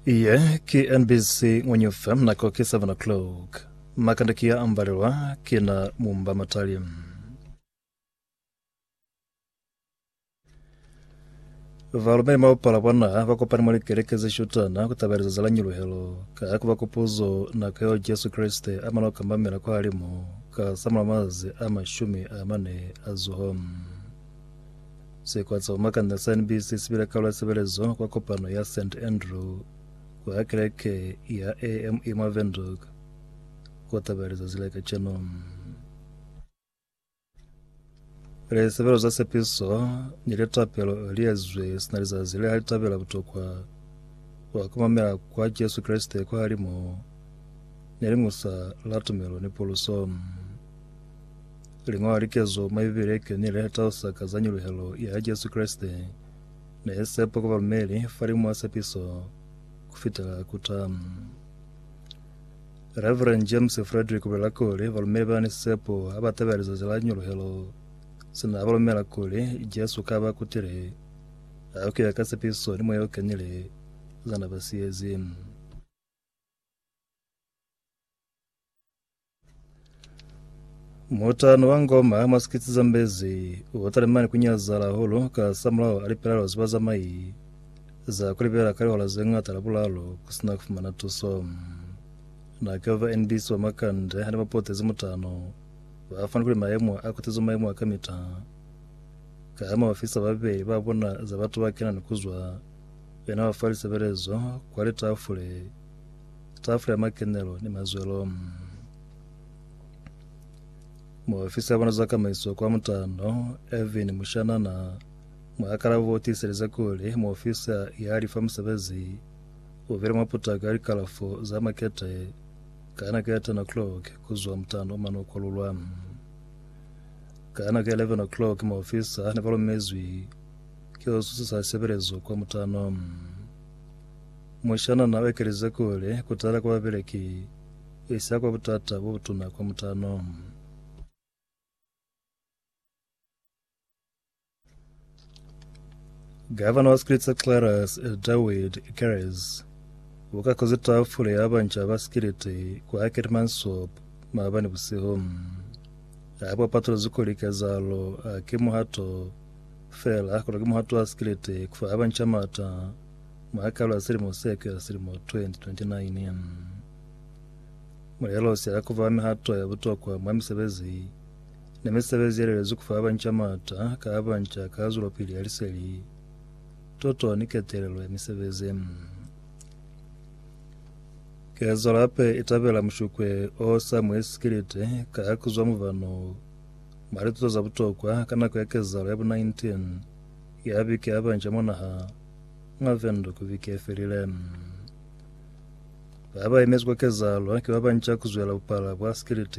Iye ki NBC Ngwenyu FM nako ki 7 o'clock. Makanda ki ya ambalelwa ki na mumba matali. Valumeli maupala bwa naha ba kopani mwa likeleke ze shutana ku tabeleza za lanyuluhelo ka ku ba kupuzo nako yeo Jesu Kreste a mala ku kambamela kwa halimu ka samulaho mazi a mashumi a mane a zuho. Sikwa sa Bumakanya sa NBC si bile karolo ya sebelezo kwa kopano ya St. Andrew kwa keleke ya AME mwa Windhoek ku taba ya lizazi la kaceno. Lisebelo za sepiso ni litapelo li ezwe sina lizazi le li tabela butokwa kwa kumamela kwa Jesu Kreste kwa halimo ne liñusa la tumelo ni puluso. Liñola likezo mwa Bibele ki lene le tausa ka za nyuluhelo ya Jesu Kreste ne ye sepa kwa balumeli falimw'a sepiso ku fitela ku ta. Reverend James Frederick ubulela kuli balumeli ba ni sepo ha ba tabela lizazi la nyuluhelo sina ba lumela kuli Jesu ka ba kutile ha ku ya ka sepiso ni moya o kenile za na ba siyezi. Mutano wa ngoma mwa sikitsi za mbezi u talimani ku nyazala hahulu ka samulaho a lipelalo za bazamai za ku libela ka lihola ze ngata la bulalo ku sina ku fumana tuso. Na ke va NBC ba Makande ha ne ba potezi mutano, ba fani kuli mayemo a kutizwe mayemo a kamita ka ha maofisa ba babeli ba bona za batu ba kena ni ku zwa Yena ufa lisebelezo kwa litafule, tafule ya makenelo ni mazwelo. Muofisi ya bona za kamaiso kwa mutano, Irvin Mushanana, muakalabo o tiiselize kuli muofisi ya lifa musebezi o bile mwa putako ya likalafo za makete ka nako ya 10 o'clock kuzwa mutano o mane o kwalulwa. Ka nako ya 11 o'clock muofisa ne ba lumezwi Ki osu sa sebelezwi kwa mutano. Mushana na ekelize kuli kutala kwa babeleki isa kwa butata bo butuna kwa mutano. Gavana wa Skilitse Clarus Dawid Keres uka kozi tafule ya banca ba Skilite kwa Hackett Mansop maabani busihu. Hapa patulezi kuli kezalo haki muhato Fela kono ki muhato wa sikilete kufa haba nca mata mwa kalo ya silimo se kuya silimo 2029. Mulelo sia kuba mihato ya butokwa mwa misebezi ni misebezi yelelezwi kufa haba nca mata ka haba nca ka zwelopili ya liseli, tuto ni ketelelo ya misebezi. Kezalo hape itabela mushukwe o sa muhe sikilete ka kuzwa mubano mwa lituto za butokwa ka nako ya kezalo ya bu 19 ya biki ya banca mwa naha mwa Windhoek biki ye felile. Ba ba emezwi kwa kezalo ki ba banca ku zwela bupala bwa sikiliti